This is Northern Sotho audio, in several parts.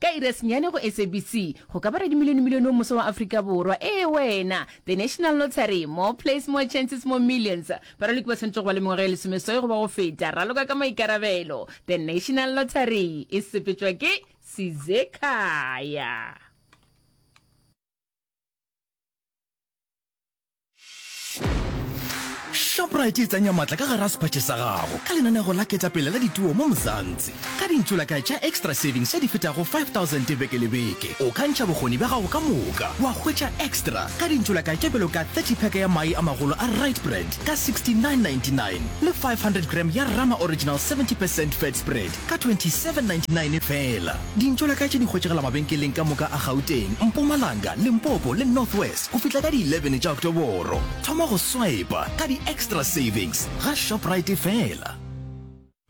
Ka iri ya senyane go SABC, go ka ba radimilionemilione o moswa wa Afrika Borwa, ee, wena, The National Lottery, More Plays, More Chances, More Millions. Baraloki ba swanetše go ba le mengwaga e lesomeswai goba go feta. Raloka ka maikarabelo. The National Lottery e sepetšwa ke Sizekhaya. Shoprite e tsenya matla ka gara sephatše sa gago ka lenanego la ketapele la dituo mo Mzansi. Ka dintsulaka tša Extra Savings tše di fetago 5000 beke le beke, o ka ntšha bokgoni bja gago ka moka wa hwetša extra ka dintsulaka tše bjalo ka 30 pack ya mae a magolo a Rite Brand ka 69.99 le 500 gram ya Rama Original 70 percent fat spread ka 2799 feela. Dintšo la ka tše di hwetšagala mabenkeleng ka moka a Gauteng, Mpumalanga, Limpopo le North West go fihla ka di 11 tša Oktoboro. Thoma go swipa ka di-extra savings ga Shoprite feela.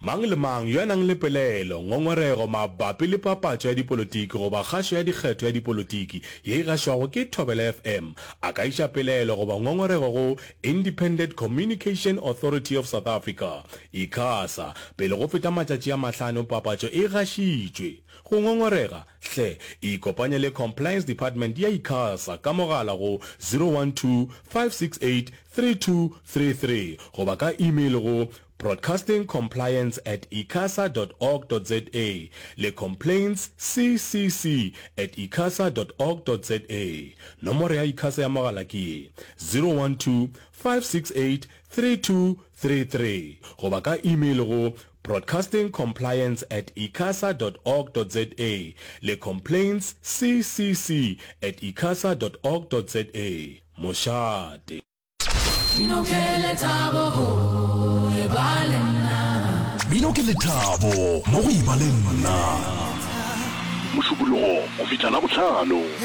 Mang le mang yo a nang le pelaelo, ngongorego mabapi le papatšo ya dipolotiki goba kgašo ya dikgetho ya dipolotiki ye e gašwago ke Thobela FM a ka iša pelaelo goba ngongorego go Independent Communication Authority of South Africa, Icasa, pele go feta matšatši a mahlano papatšo e gašitšwe. Go ngongorega? Hle ikopanye le Compliance Department ya Icasa ka mogala go 012 568 3233 goba ka email go Broadcasting Compliance at icasa dot org dot za le Complaints CCC at icasa dot org dot za. Nomoro ya Icasa ya mogala ke ye, 012-568-3233 goba ka email go Broadcasting Compliance at icasa dot org dot za le Complaints CCC at icasa dot org dot za. Mošate. Bino ke lethabo go e ba le nna. Bino ke lethabo mo go e ba le nna. Mošupologo go fihla Labohlano.